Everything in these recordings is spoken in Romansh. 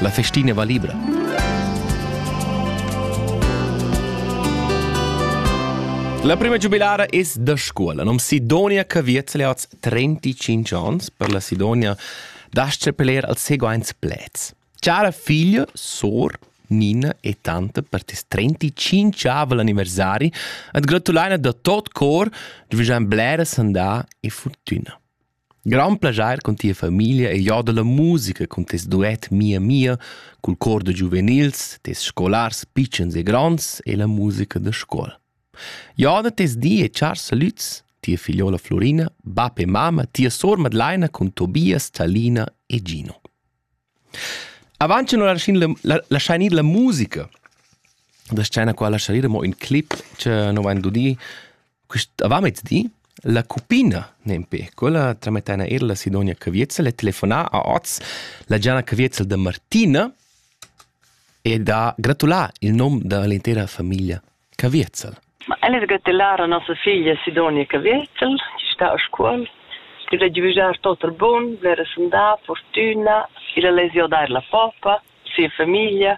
La festina va libra. La prima giubilara es da scuola. Nom Sidonia Caviez le oz 35 ans per la Sidonia dasce peler al seguaints plets. Cara figlia, sor, Nina e tante per tes 35 anniversari et gratulaina da tot cor de vigian blera sandà e fortuna. Grand plaschair cun tia famiglia e jo dalla musica cun tes duet Mia Mia cul cor da giuvenils, tes scolars pitschens e gronds e la musica da scola. Jo da tes di e chars salüds, tia figliola Florina, bap e mama, tia sor Madlaina cun Tobias, Talina e Gino. Avant cha nu laschain la laschain ir la musica da scena qua laschain ir amo ün clip cha nu vain dudì quist avantmezdi. La cuppina nempe, quella tramettaina eir la Sidonia Caviezel e telefonà a hoz la Gianna Caviezel da Martina e da gratular il nom da l'intera famiglia Caviezel. Ma el es gatelara nossa figlia Sidonia Caviezel, chi sta a Scuol. Illa giüjar tot il bun, blera sandà, fortüna, illa lezia dair la popa, sia famiglia.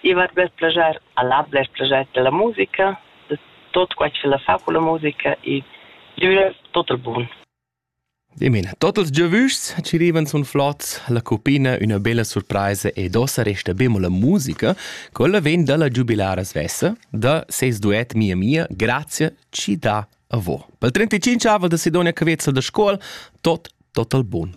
I va bler plager, al ha bler plager della musica, de tot quai chi la fa culla musica e giüra tot il bun. Dimena, tot ils giavüschs chi rivan sun flots, la cuppina üna bella surpraisa ed ossa resta bemo la musica. Quella vegn da la giubilara svessa, da ses duet Mia Mia, Grazia chi dà a vo. Pel 35 aval da Sidonia Cavezza da Scuol, tot total bun.